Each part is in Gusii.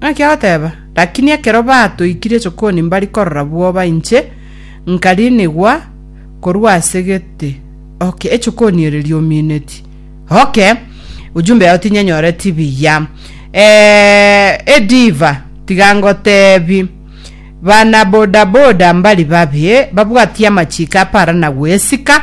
Naki agoteba, Lakini ekero batoikirie chokoni mbari korora bwoba inche, nkariinigwa korwa ase gete, oke, echokoni ere riomineti. Oke, ujumbe yao tinyenyoreti buya. Eh, ediva, tiga ngotebi, bana bodaboda mbari babie babwatie amachiko aparana goesika,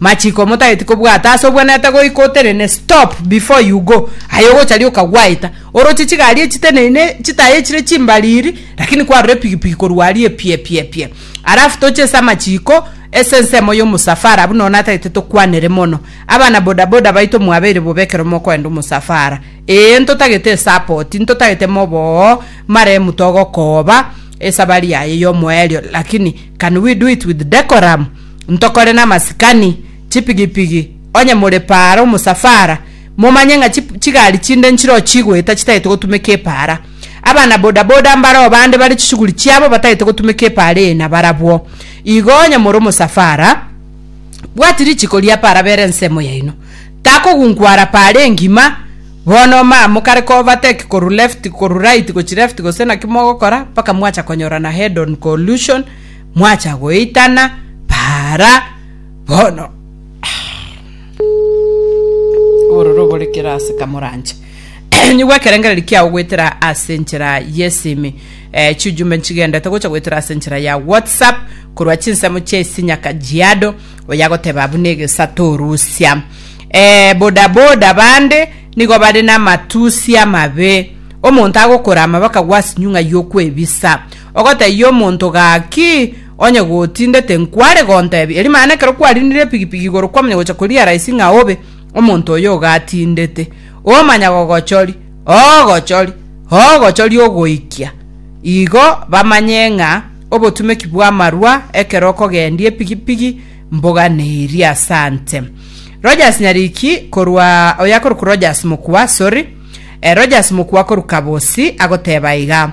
Machiko motageti kobwata ase obwenerete goika otenene stop before you go aye ogocha rioka gwaeta oroche chigari echiteneine chitaye echire chimbariri lakini kwarora epigipigi korwa aria epiepiepie alafu toche ase amachiko ase ensemo ya omosafara abwo noo natagete tokwanere mono abana bodaboda baito mwabeire bobe ekero mokoenda omosafara ee ntotagete esapoti ntotagete moboo mare mutogokooba esabari yaye yomoerio lakini can we do it with decorum ntokore namasikani, chipigipigi, onye more paara omosafara, momanye ng'a chi chigari chinde nchiroo chigoeta chitagete gotumeka epaara. Abana bodaboda mbaroo bande bare chishughuli chiabo batagete gotumeka epaara eye nabarabwo. Igo onye more omosafara, bwati richiko ria paara bera ensemo yaino. Takogunkwara paara engima, bono ma mokare koovertake korwa left korwa right gochia left gose naki mogokora, mpaka mwacha konyorana head on collusion, mwacha goitana baara bono. Ororo obore kera ase kamoranche. Nyigwa ekerengereri kiao goetera ase nchera yesimi. Eh, chijumbe nchigendete gocha goetera ase nchera ya WhatsApp korwa chinsemo chia isi nyaka jiado oyagoteba abu negesa torusia. Eh, boda boda bande nigo bare na matusi amabe. Omonto agokorama bakagwa ase nyung'a yokwebisa. Ogotaiya omonto gaki, onye gotindete, nkware gontebia, erio mana ekero kwarinire epigipigi igoro kwamanya gocha korealize ng'a obe omonto oyo ogatindete. Omanya gogochori, ogochori, ogochori ogoikia igo bamanye ng'a obotumeki bw'amarwa ekero okogendia epigipigi mbogane eria. Asante Rogers Nyariki korwa oyo akorokwa Rogers Mokua, sorry, eh, Rogers Mokua korwa Kabosi agoteba iga.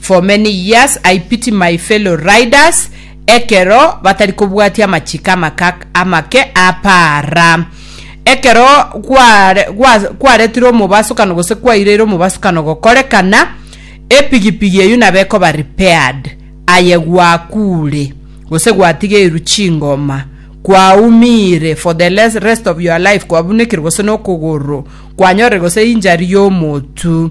For many years I pity my fellow riders ekero batari kobwatia amachiko amaka amake apaara. Ekero gware gwa kwaretire omobasukano gose kwaireire omobasukano gokorekana, epigipigi eyio nabo ekoba repaired aye gwakuure gose gwatigeirwe chingoma, kwaumiire for the les rest of your life, kwabunekerwe gose nokogoro, kwanyorire gose injury y'omotu.